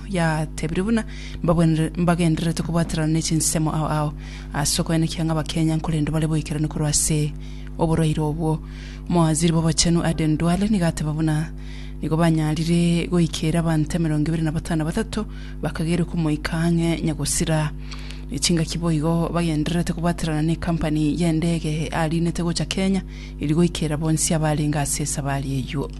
yatebire buna mbabwenere- mbagendererete kobwaterana ne chinsemo ao ao ase okoenekia ng'a bakenya nkorende bare boikeranu korwa ase oborwaire obwo. Omowaziri bw'Obochenu Aden Duale nigo ateba buna nigo banyarire goikeera abanto emerongo ebere na batano na batato bakagerwa komoika ang'e Nyagusira. Ne chingaki boigo bagendererete kobwaterana ne ekampani y'endege eariinete gocha Kenya eria goikeera bonsi abarenge ase esabari eyio.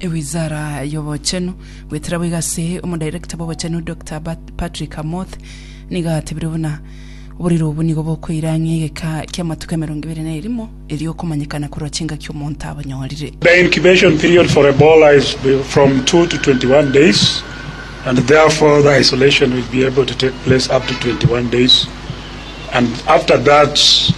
Ewizara y'obochenu. Goetera boigo ase omodirector bw'obochenu Doctor Pat- Patrick Amoth nigo atebire buna oborero obwo nigo bokoira ang'e egeka ki'amatuko emerongo ebere na erimo erio okomanyekana korwa chingaki omonto abanyorire. The incubation period for Ebola is be- from 2 to 21 days, and therefore the isolation will be able to take place up to 21 days. And after that,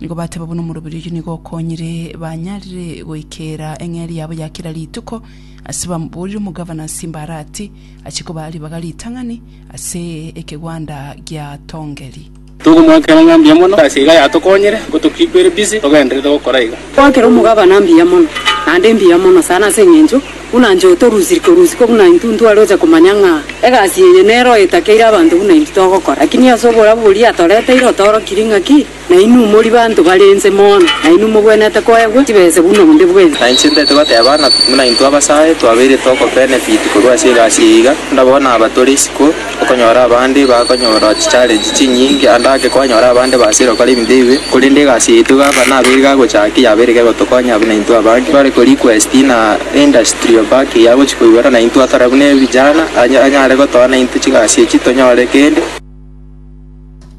Nigo bateba buna omoroberi oyio nigo okonyire banyarire goikera eng'eria yabo ya kera rituko, ase bamoborire omogavana ase Simbarati, achie kobaa ribaga ritang'ani ase ekegwanda gia Tongeri. Tokomoakera ng'a mbuya mono, egasi iga yatokonyire ngotokikwere bisi togenderere gokora iga. Koakera omogavana mbuya mono, naende mbuya mono sana ase eng'encho Buna inche otorusirie korusukwa buna intwe intwe are oche komanya ng'a egasi yeye nero etakeire abanto buna intwe togokora. Lakini ase oborabu boria atoreteire otoorokirie ng'a ki, na inwe mori banto bare inse mono, na inwe mogwenerete koegwa chibese buna onde bwensi. Na inche ntaete goteba ng'a buna intwe abasae twabeire tokobenefiti korwa ase egasi eye iga, onde abao nabatorisia ko. Okonyora abande bakonyora chichallenge chinyinge ande ake kwanyora abande basire gokora ebinto ebibe korende egasi yaito gavana aba ere gagochaki yaba ere gegotokonya buna intwe abange bare ko request na industrial back eye agochi koigwera na intwe atare buna ebijana anya anyare gotoa na intwe chigasi echi tonyore kende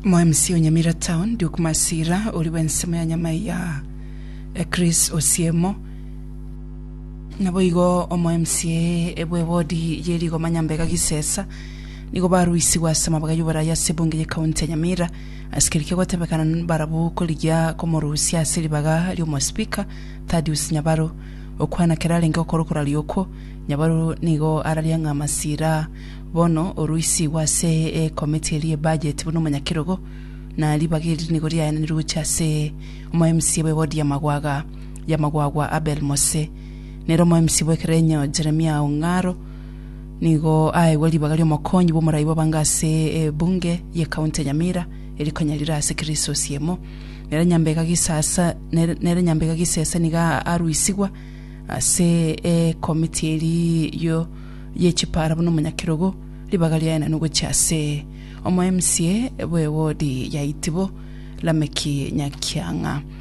Mo MC o Nyamira Town, Duke Masira, oria bw'ensemo ya Nyamaiya, Chris Osiemo, Naboigo omo mca bw'ebodi ye rigoma Nyambega Gisesa nigo baruisigwe ase amabga y'oboraia ase ebunge ye county ya Nyamira ase keria kegotebekana nbarabu korigia komorusia ase ribaga ri'omospeaker Thadius Nyabaru okwana kera arenge okorwa koraria okwo Nyabaru nigo araria ng'a masira bono oruisigwe ase ekomiti eria ye budget buna omonyakerogo na ribaga eri nigo riaenanirwe gochia ase omo mca bw'ebodi ya Magwaga y'amagwagwa a Belmose. Nere omoemisi bw'ekerenyo Jeremia Ong'aro nigo aegwe ribaga ri'omokonyi bw'omorai bw'abanga ase ebunge y'ecounty ya Nyamira, eri konya rire ase Kirisosi emo. Nere Nyambega Gisasa nere- nere Nyambega Gisesa nigo a- aruisigwa ase ekomiti eri yo y'echipara buna omonyakerogo, ribaga riaye naende ogochia ase omoemsie bw'ewodi ya Itibo, Lameki Nyakiang'a.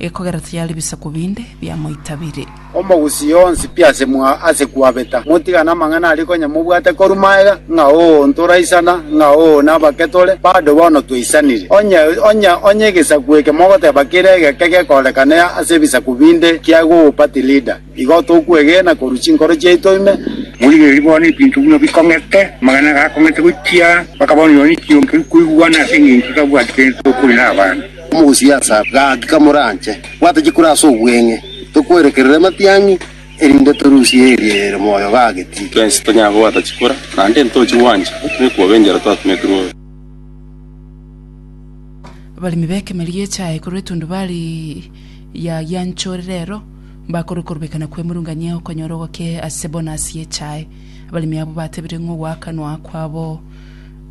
Ekogera tiyari bisaku binde biamoitabire. Omogusii onsi pi ase mwa ase kwabeta, motigane amang'ana aria konya mobwate korwa magega, ng'a oo ntoraisana, ng'a oo nabake tore, bado bono twaisanire. Onye onye onye egesaku eke mogoteba kere egeke gekorekana ase ebisaku binde kiagopa tilida. Igo tokwegena korwa chinkoro chiaito ime. Morigererie bono ebinto buna bikong'ete, amang'ana gakong'ete gochia mpaka bono, nonya nekiombe nkoigwana ase engencho tabwati kende tokori nabande. Omogosi Asaf, gaki kamoranche, bwata chikura ase obweng'e, tokwerekerere amatiang'i, erinde torusie eria ere moyo gageti. Twensi tonyare kobwata chikura, naende ntochi gwancha otome kwobe enchera twatumetirwe obe. Abaremi b'ekemeri gi'echae korwa etundubari yagianchore rero. Bakorwe korobekana kw'emurung'anyia okonyora ogoke ase bonasi y'echae. Abaremi abwo batebire ng'a ogoakanwa kwabo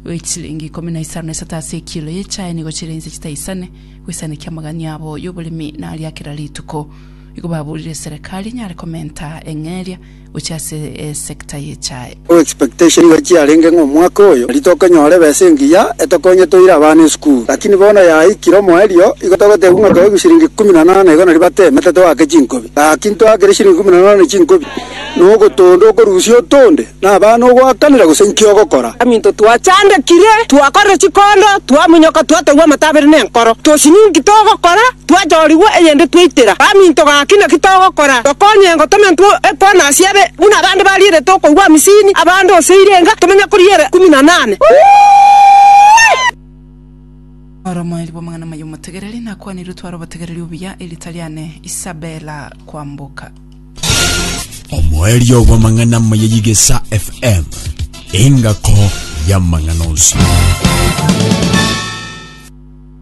gwe chilingi ikomi na isano na isato ase ekilo y'echae nigo chire inse chitaisane goisanekia amagani abo y'oboremi na aria kera rituko. Igo baburire serekari enyare komenta eng'eria gochia ase esector y'echae. Our expectation nigo chiarenge ng'a omwaka oyo nari tokonyora ebesa engiya etokonye toire abana esukuru, lakini bono yaikire omoerio igo togotebiwa ng'a toegwe shilingi ikomi na nane igo nari batemete toake chinkobi. Gaki ntoakire shilingi ikomi na nane chinkobi nogotonda okorusia otonde na abana ogoakanera gose inki ogokora. Aminto twachandekire, twakorire chikondo, twamunyoka, twategwa amato abere nenkoro, tochi ninki togokora. Twachoorigwa eyende twaitera. Gaminto gaki naki togokora? Tokonyengo tomentwe ekoona ase ebe, buna abande barierete okoigwa amisini, abande ose irenga, tomenye koriera ikumi na nane. Oromoerio bw'amang'ana amaya omotegereri nakwanirwe tware obotegereri obuya erita riane Isabella Kwamboka. Omoerio bw'amang'ana amaya y'Igesa FM, engako y'amang'ana onsi.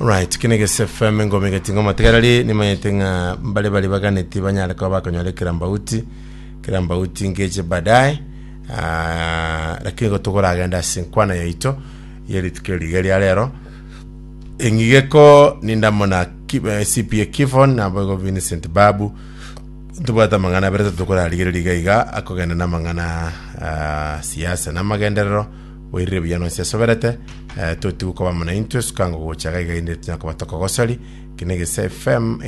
Alright, kino egese FM ngome geti ngoma tegarari nimanyete ng'a mbare bari baganeti banyare kuba bakonyora kera mbauti kera mbauti ngeche baadaye Ah, lakini gotogoragenda ase nkwana yaito yerituko eriga ria rero eng'igeko nindamo na Ki- eh, CPA Kifon nabo igo Vincent Babu tobwate amang'ana abere tokorarigereria iga iga akogenda n'amang'ana ah, siasa n'amagenderero Oirire buya nonsi asoberete, eh, totigwe koba buna intwe, suka ngogocha iga iga, inde tinya koba tokogosori. Eki ne Gese FM.